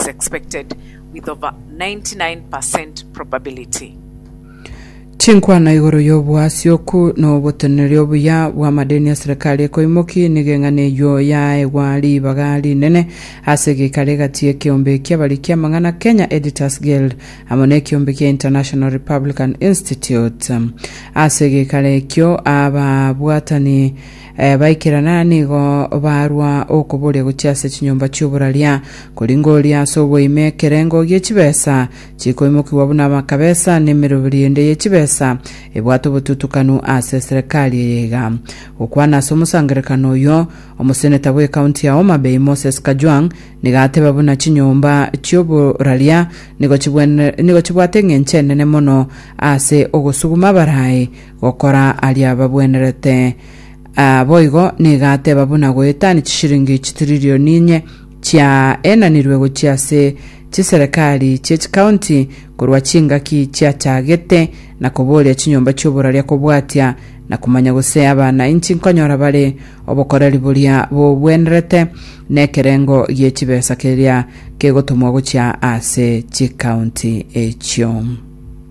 is expected with over 99 per cent probability. Chinkwana igoro y'oboasioku na oboteneneri obuya bw'amadeni ya serikali ekoimoki nigo eng'ana eyio yaegwa ribaga rinene ase egeikaro egati y'ekeombe ki'abariki amang'ana Kenya Editors Guild amo na ekeombe kia International Republican Institute. Ase egeikaro ekio ababwatani Baikerana nigo barwa okoboria gochia ase chinyomba chi'oboraria, kori ngoria ase oboime ekerengo gie chibesa chikoimokigwa buna amakabesa, na emeroberi ende ye chibesa ebwate obotutukanu ase eserekari eye iga. Gokwana ase omosangererekano oyio, omoseneta bw'ekaunti ya Homa Bay Moses Kajwang nigo ateba buna chinyomba chi'oboraria nigo chibwate eng'encho enene mono ase ogosuguma abaraai, Gokora aria babwenerete. Aa boigo nigo ateba buna goetania chishilingi chitirilioni inye chiaenanirwe gochia ase chiserekari chie chikaunti korwa chingaki chiachagete, na koboria chinyomba chi'oboraria kobwatia na komanya gose abanainchi nkonyora bare obokoreri boria bobwenerete nekerengo gie chibesa keria kegotomwa gochia ase chikaunti echio.